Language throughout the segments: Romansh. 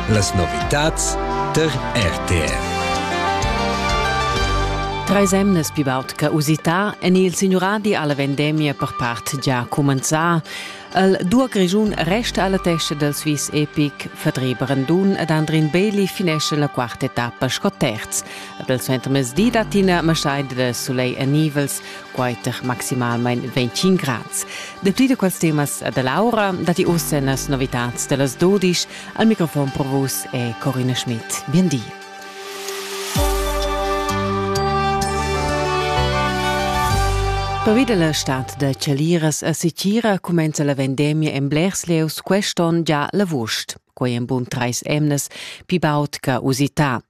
Las novitads tar RTR. Treis emnas pivart che usità en il signuradi alla vendemia per part già cumenzà. El dua Grischun resta alla testa del Swiss Epic, Vertrieb Randun ed Andrin Bailey finesce la quarta etappa sco terz. Ed il suenter mezdi datina Masai de Soleil e Nivels quaiter maximalmain ventg grads. Dapli da quels temas da Laura datti oz en las novitads da las dodisch. Al microfon pro vus è Corina Schmidt. Bien di. Pervi da la stad da chaliras a Sitira cumenza la vendemia en blers lieus quest'onn già l'avust. quei en bun treis emnas pi baud che usità.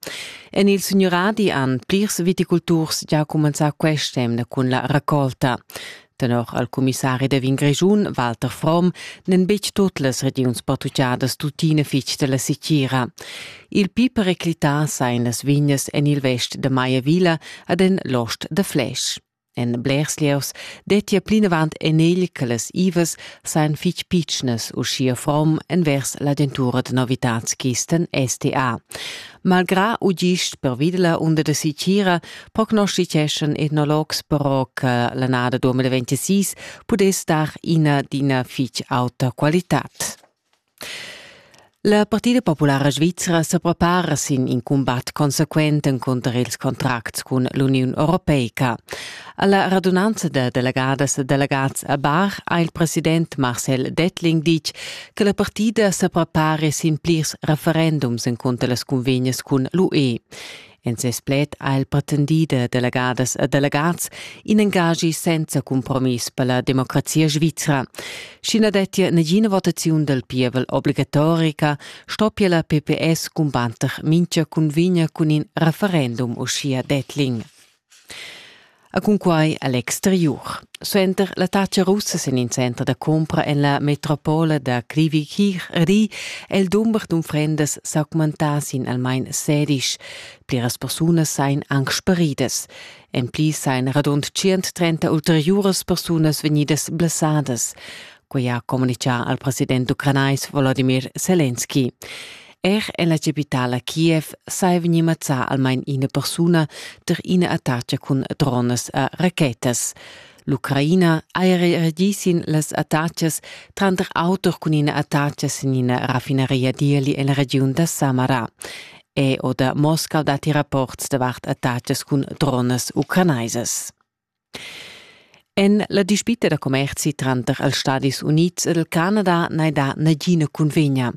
En il signuradi han plirs viticulturs già cumenzà quest'emna cun la raccolta. Tenor al comissari da Vin Grischun, Walter Fromm, n'en betg tut las regiuns portugiadas tuttina fitg della sicira. Il pi periclità sa en las vignas en il vest de Maiavilla ad en l'ost de Flesch. En blers lieus dettia plinavant enegl che las ivas sajan fitg pitschnas, uschia form envers l'agentura da novitads Kisten STA. Malgrà u gist pervi da la unda da sitgira prognosticeschan etnologs però che l'annada 2026 pudess dar ina d'ina fitg auta qualitad. La Partida populara svizra sa prepara sin in cumbat consequent encunter ils contracts cun l'Uniun europeica. Alla radunanza da delegadas e delegats a Bar ha il president Marcel Dettling ditg che la partida sa prepara sin plirs referendums encunter las cunvegnas cun l'UE. En ses pled ha el pretendì da delegadas e delegats in engagi senza cumpromiss per la democrazia svizra. Sch'i na dettia nagina votaziun dal pievel obligatorica, stoppia la PPS cumbatter mintga cunvegna cun in referendum, uschia Dettling. a cunquai a l'exteriur. Suenter la tacha russa sin in center da compra en la metropola da Krivikir ri el dumber d'unfrendas s'augmentà sin almain sedisch. Pliras persunas sain anc sparidas. En pli sain radund 130 ulteriuras persunas vegnidas blessadas. Quai ha communichà al president ucranais Volodymyr Zelensky. Er ella capitala Kiev sai vegnir mazzà almain ina persuna tar ina attaca cun dronas e rachetas. L'Ucraina ha reagì sin las attacas, tranter auter cun ina attaca sin ina raffinaria d'ieli en la regiun da Samara. E oder Moskau datti rapports davart attacas cun dronas ucrainaisas. En la dispita da commerzi tranter els Stadis Unids ed il Canada n'hai dà nagina cunvegna.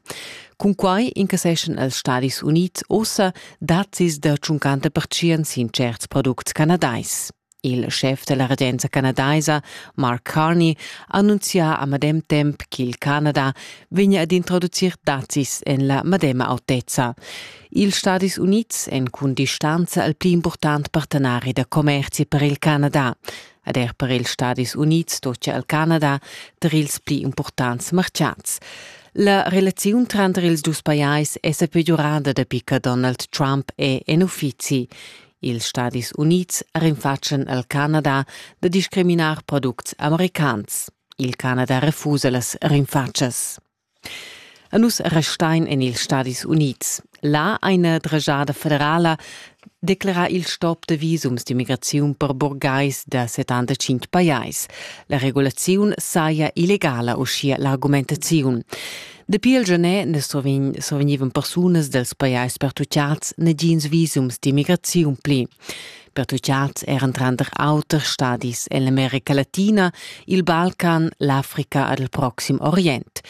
Cunquai incasseschan els Stadis Unids ussa dazis da tschuncanta pertschient sin certs products canadais. Il schef da la regenza canadaisa, Mark Carney, annunzia a medem temp ch'il Canada vegnia ad introducir dazis en la medema autezza. Ils Stadis Unids èn cun distanza il pli impurtant partenari da commerzi per il Canada. Ed er per ils Stadis Unids stoppia il Canada ter ils pli impurtants martgads. La relaziun tranter ils dus pajais è sa peggiorada dapi che Donald Trump è en uffizi. Ils Stadis Unids rinfatschen al Canada da discriminar products americans. Il Canada refusa las rinfatschas. A nus restain en ils Stadis Unids. Là eine drejada federala declara il stop de visums d'immigraziun per burgais da 75 pajais. La regulaziun saja illegala, uschia l'argumentaziun. Dapi il genè ne survegnivan persunas dels pajais pertucciats negins visums d'immigraziun pli. pertucciads eran tranter auter stadis ell'America Latina, il Balcan, l'Africa ed il Proxim Orient.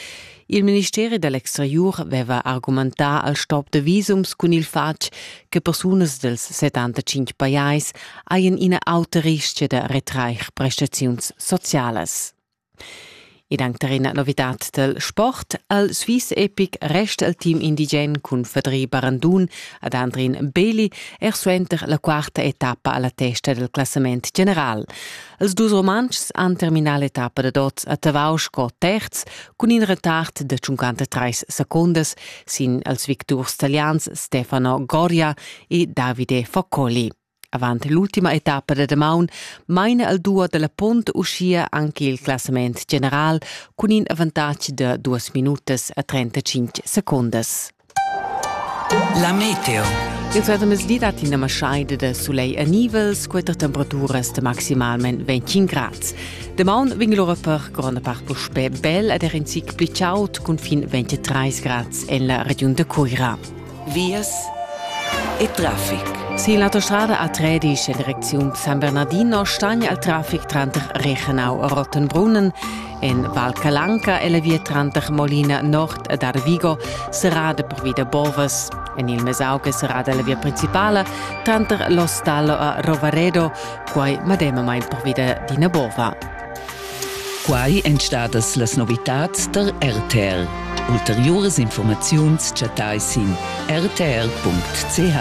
Il ministeri dell'exteriur aveva argumentà al stop da visums cun il fatg che persunas dels 75 pajais haien ina auta ristga da retrair prestaziuns socialas. Ed anc tar ina novitad dal sport. Al Swiss Epic resta il team indigen cun Fedri Barandun ad Andrin Beli er suenter la quarta etappa a la testa dal classament general. Els dus Rumantschs han terminà l'etappa da dots a Tavau sco terz cun in retard da 53 secundas sin els victurs talians Stefano Goria e Davide Foccoli. Avant l'ultima etappa da damaun maina al duo dalla Pont uschia anche il classament general cun in avantatg da duas minutas a 35 secondas. La meteo. Il suentermezdi dat ina maschaida da sulegl a nivels, quatter temperaturas de maximalment 25 grad. De maun vegn lora per gronda part puspè bel ed er in zic pli chaud cun fin 23 grad en la regiun de Coira. vias e traffic. Sin l'autostrada A13 en Direcziun San Bernardino stagn al traffic tranter Rechenau e Rottenbrunnen. En Val Calanca e la via tranter Molina Nord ed Arvigo serrada pervi da bovas. En il Mesauge serrada la via principala tranter L'Ostallo a Rovaredo, quai medemamain pervi d'ina bova. Quai èn stadas las novitads tar RTR. Ulteriuras informaziuns chattai sin rtr.ch.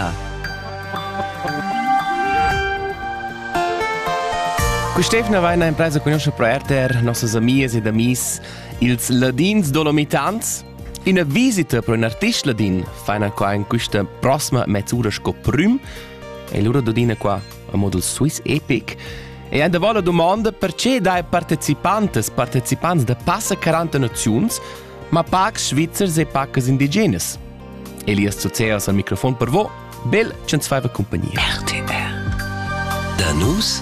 Quest'evna va ina impresa conoscia pro RTR, nossas amias ed amis, ils ladins dolomitans. Ina visita pro un artist ladin faina qua in questa prossima mezz'ura sco prüm e lura dodina qua a model Swiss Epic. E en davant la domanda perché dai partecipantas partecipants da passa 40 naziuns, ma pacs svizzers e pacas indigenas. Elias Zuzeas al microfon per vo, bel ch'ins faiva compagnia. RTR. Da nus